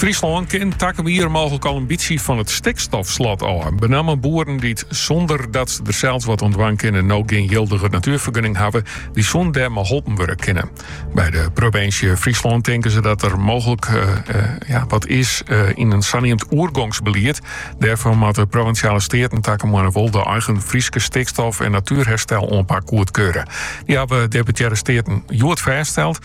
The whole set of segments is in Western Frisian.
Fryslân kin takom jier mooglik al in bytsje fan it stikstofslot ôf. Benammen boeren dy't sûnder dat se der sels wat oan dwaan kinne no gjin jildige natuerfergunning hawwe, dy soene dêr mei holpen wurde kinne. By de provinsje Fryslân tinke se dat der mooglik eh, eh, ja, wat is eh, yn in saneamd oergongsbelied. Dêrfoar moatte provinsjale steaten takom maaie wol de eigen Fryske stikstof- en natuerherstel-oanpak goedkeure. Dy hawwe deputearre steaten hjoed fêststeld.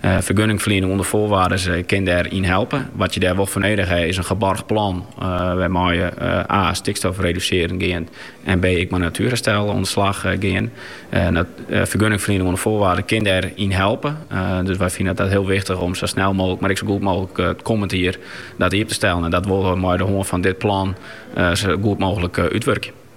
Fergunningferliening ûnder foarwaardes kin dêr yn helpe. Wat je dêr wol foar nedich ha is in geboarge plan wêrmei je a. stikstof redusearjen gean en b. ek mei natuerherstel oan de slach gean. Fergunningferliening ûnder foarwaardes kin dêr yn helpe. Dus wy fine it hiel wichtich om sa snel mooglik, mar ek sa goed mooglik it kommend jier dat iepen te stellen. En dat wolle we oan de hân fan dit plan sa goed mooglik útwurkje.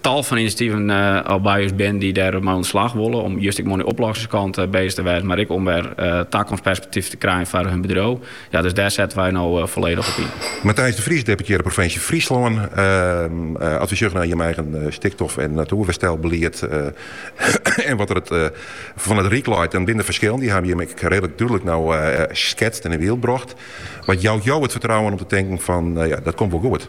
Tal fan inisjativen al by ús bin dy't der mei oan de slach wolle om just ek mei de oplossingskant bezig te wêzen, mar ek om wer takomstperspektief te krijen foar hun bedriuw. Ja, dus dêr sette wy no folledich op yn. Matthijs de Vries, deputearre provinsje Fryslân, as wy sjogge nei jim eigen stikstof- en natuerherstelbelied en wat der fan it Ryk leit. Dan binne der ferskillen, dy hawwe jim ek redlik dúdlik no sketst en yn byld brocht. Wat jout jo it fertrouwen om te tinken fan, ja, dat komt wol goed?